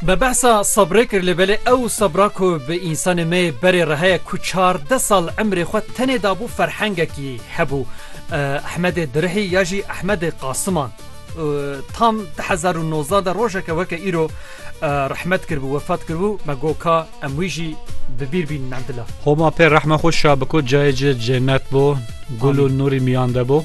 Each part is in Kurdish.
Be behsa sebrê kir lê belê ew sebra ku bi însanê me yê berê re heye ku çardeh sal emrê xwe tenê dabû ferhengekî hebû. Ehmedê Dirihî ya jî Ehmedê Qasiman tam du hezar û nozdeh de rojeke weke îro rehmet kiribû, wefat kiribû me got ka em wî jî bi bîr bînin endila. Homa pê rehma xwe şa biko cayê ci cenet bo, gul û nûrî miyan de bo.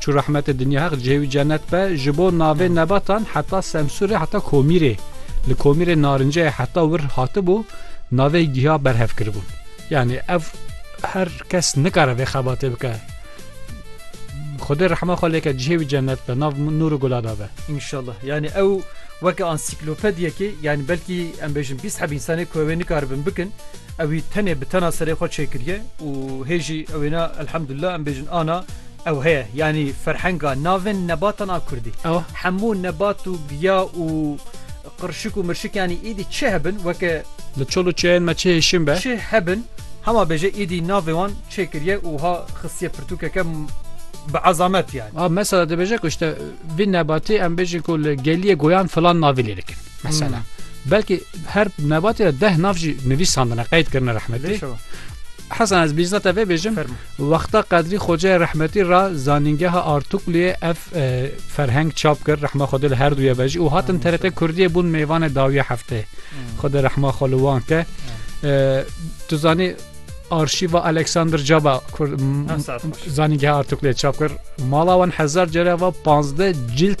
Çû rehmetê dinya heq cihê wî cenet be ji bo navê nebatan heta semsûrê heta komîrê li komîrê narinceyê heta wir hatibû navê giha berhev kiribûn yanî ev her kes nikare vê xebatê bike Xwedê rehma xwe lêke cihê wî cenet be nav nûr û gula dabe Înşallah yanî ew weke ansiklopediyekê yanî belkî em bêjin bîst heb însanê ku wê nikaribin bikin ewî tenê bi tena serê xwe çêkiriye û hêjî ewêna elhemdulillah em bêjin ana Ew heye yanî ferhenga navên nebatan a kurdî. Hemû nebat û giya û qirşik û mirşik yanî îdî çi hebin weke. Li çol û çêyên me çi hêşîn be. Çi hebin hema bêje îdî navê wan çê kiriye û wiha xistiye pirtûkeke bi ezamet yanî. A mesela dibêje ku işte vî nebatê em bêjin ku li geliyê goyan filan navê lê dikin. Mesela belkî her nebatê de deh nav jî nivîsandine qeyd kirine rehmetê. Hesen ez bîzna te vê bêjim wexta qedrî xoceyê rehmetî ra zanîngeha Artukliyê ev ferheng çap kir rehma xwe li her duye vejî û hatin TRT Kurdiyê bûn mêvanê dawiya hefteyê xwe di rehma xwe li wan ke tu zanî arşîva Alexander Caba zanîngeha Artukliyê çap kir mala wan hezar cere va 15 cilt